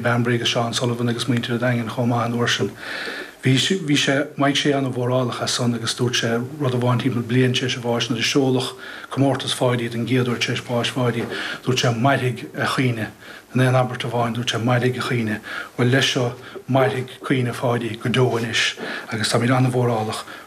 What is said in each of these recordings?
Bernie Breandán agus Seán Sullivan agus muintir a' Daingin chomh maith an uair sin. Bhí, bhí sé, Maidhc Sé an-mhórálach as san agus dúirt sé rud amháin timpeall bliain tar éis a bháis nuair a seoladh comórtas Pháidí don gcéad uair tar éis bás Pháidí, dúirt sé 'Mairfidh a chaoineadh', in aon abairt amháin dúirt sé 'Mairfidh a chaoineadh'. Bhuel leis seo, mairfidh caoineadh Pháidí go deo anois agus táimid an-mhórálach go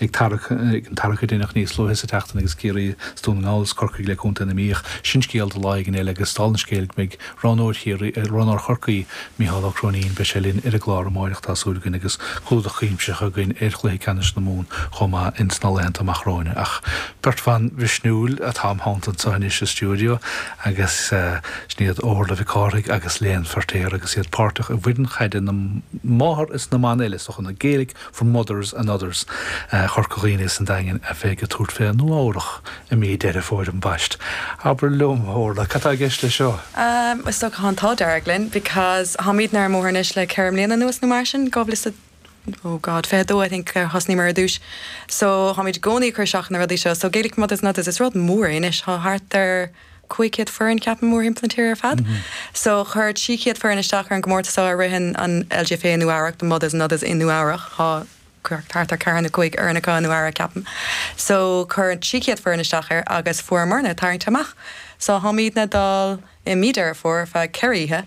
ag tarrac, ag an tarrac a deineadh níos luaithe sa tseachtain agus Ciarraí is Dún na nGall is Corcaigh le contae na Mí ach sin scéal do lá éigin eile agus dál an scéil go mbeidh roghnóir Chiarraí, roghnóir Chorcaí, Micheál Ó Cróinín, beidh sé linn ar an gclár amáireach tá súil againn agus clúdach cuimsitheach againn ar chluiche ceannais na Mumhan chomh maith ins na laethanta amach romhainn ach beirt bhan mhisniúil atá im theannta anseo anois sa stiúideo agus sin iad Órla Mhic Cárthaigh agus Léan Feirtéar agus iad páirteach i bhfoireann chaide na Máthar is na mBan eile sa nó Gaelic 'For Mothers and Others', Corca Dhuibhne is an Daingean, a bheidh ag tabhairt fé Nua Eabhrach i mí Deireadh Fómhair ambaist. Abair liom, Orla, cad tá i gceist le seo? Is dócha tá an t-ádh dearg linn, because táimidne ar an mbóthar anois le ceithre mbliana anuas nó mar sin, 2000, oh God, 22 I think a thosnaíomar ar dtúis, so táimid i gcónaí ag cur isteach ar na rudaí seo, so Gaelic for Mothers and Others, is rud mór é anois, tá thart ar, 500 foireann ceapaim mórthimpeall na tíre ar fad. So chuir 600 foireann isteach ar an gcomórtas so a ritheann an LGFA i Nua Eabhrac, the Mothers and Others in Nua Eabhrac, tá thart ar ceithre nó cúig fhoireann acu i Nua Eabhrac ceapaim. So chuir 600 foireann isteach air agus fuaireamarna tarraingt amach. So táimidne ag dul i mí Deireadh Fómhair ar feadh ceithre oíche,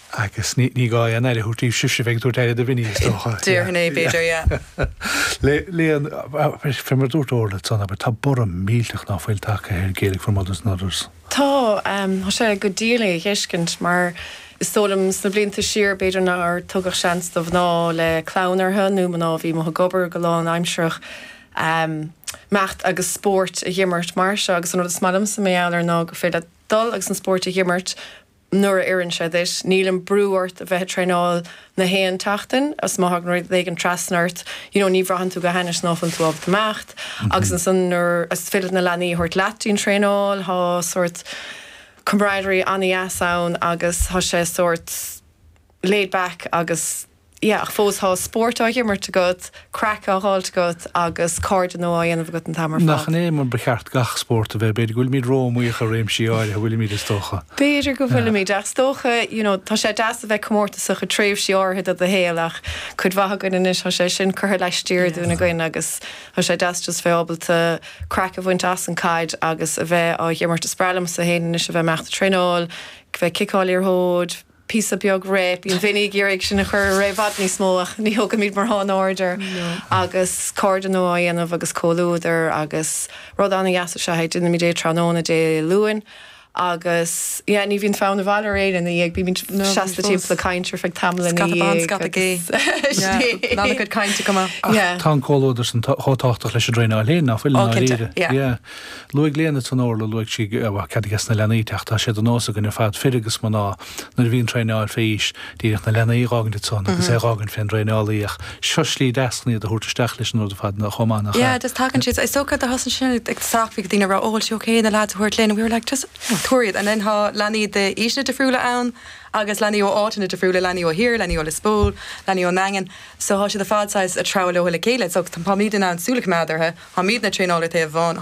Agus ní gá aon aire a thabhairt daoibh sibhse a bheidh ag tabhairt aire do Vinny, is dócha. Déarfainn é, b'fhéidir, yeah. Léan, fé mar a dúirt Orla ansan, abair, tá borradh millteach ná fuil tagtha ar Gaelic for Mothers and Others. Tá. Tá sé go diail é a fheiscint, mar is dóigh liom sna blianta siar, b'fhéidir nár tugadh seans do mhná le clann orthu, nó mná a bhí amuigh ag obair go lánaimsearach, imeacht agus spóirt a dh'imirt mar seo. Agus an rud is maith liomsa mar gheall air ná gur féidir leat dul agus an spóirt a dh'imirt, nuair a oireann sé duit, níl aon bhrú ort a bheith ag traenáil na haon tseachtain, is má thagann rud éigin trasna ort, you know, ní bhraitheann tú go hainnis ná fuil tú ábalta imeacht, agus ansan nuair is féidir na leanaí a thabhairt leat dtí'n traenáil, thá sort camaraderie an-dheas ann agus thá sé sort laid back agus. yeah ach fós tá spóirt á himirt agat, craic á dh'fháilt agat agus cairde nua á dhéanamh agat an t-am ar fad. Nach in é mar ba cheart gach spórt a bheith, b'fhéidir go bhfuilimid ró-iomaíoch i réimsí áirithe, bhfuilimid is dócha. B'fhéidir go Yeah. bhfuilimid ach is dócha you know tá sé deas a bheith comórtasach i tréimhsí áirithe de do shaol ach cuid mhaith againn anois tá sé sin curtha laistiar dínn Yes. againn agus tá sé deas just bheith ábalta craic a bhaint as an caid agus a bheith á dh'imirt, is breá liomsa féin anois a bheith imeacht ag traenáil, bheith ag ciceáil liathróid, píosa beag réidh. Bíonn daoine ag iarraidh sinn a chur i bhfad níos mó ach ní thugaimid mórán aird air. Agus cairde nua á dhéanamh agus comhluadar agus rud an-deas is ea é. Déanaimid é tráthnóna Dé Luain agus, yeah, ní bhíonn fonn abhaile ar éinne ina dhiaidh. Bímid seasta timpeall ag caint ar feadh tamaill ina dhiaidh. Scata ban, scata gé. Yeah, an-chuid cainte. Go maith. Yeah. Tá an comhluadar san chomh tábhachtach leis an traenáil féin, nach bhfuil, i ndáiríre? Yeah. Luaigh Léna Tón Orla, luaigh sí, bhuel, cead aiges na leanaí teacht, tá sé de nós againn ar fad, fir agus mná, nuair a bhíonn traenáil fé aois, díreach na leanaí a dh'fhágaint ansan agus é a dh'fhágaint fén dtraenálaí ach seo slí deas chun iad a thabhairt isteach leis an rud ar fad nó chomh maith nach ea? Yeah, just tagann siad, is dócha do thosnaigh sin ag teacht, bhí daoine ag rá, oh is ok na lads a thabhairt linn and we were like just tabhair iad and then tá leanaí d'aoiseanna difriúla ann agus leanaí ó áiteanna difriúla, leanaí ó thiar, leanaí ó Lios Póil, leanaí ón nDaingean so tá siad ar fad saghas ag treabhadh leo le chéile so táimid in ann súil a choimeád orthu, táimidne ag traenáil ar thaobh amháin,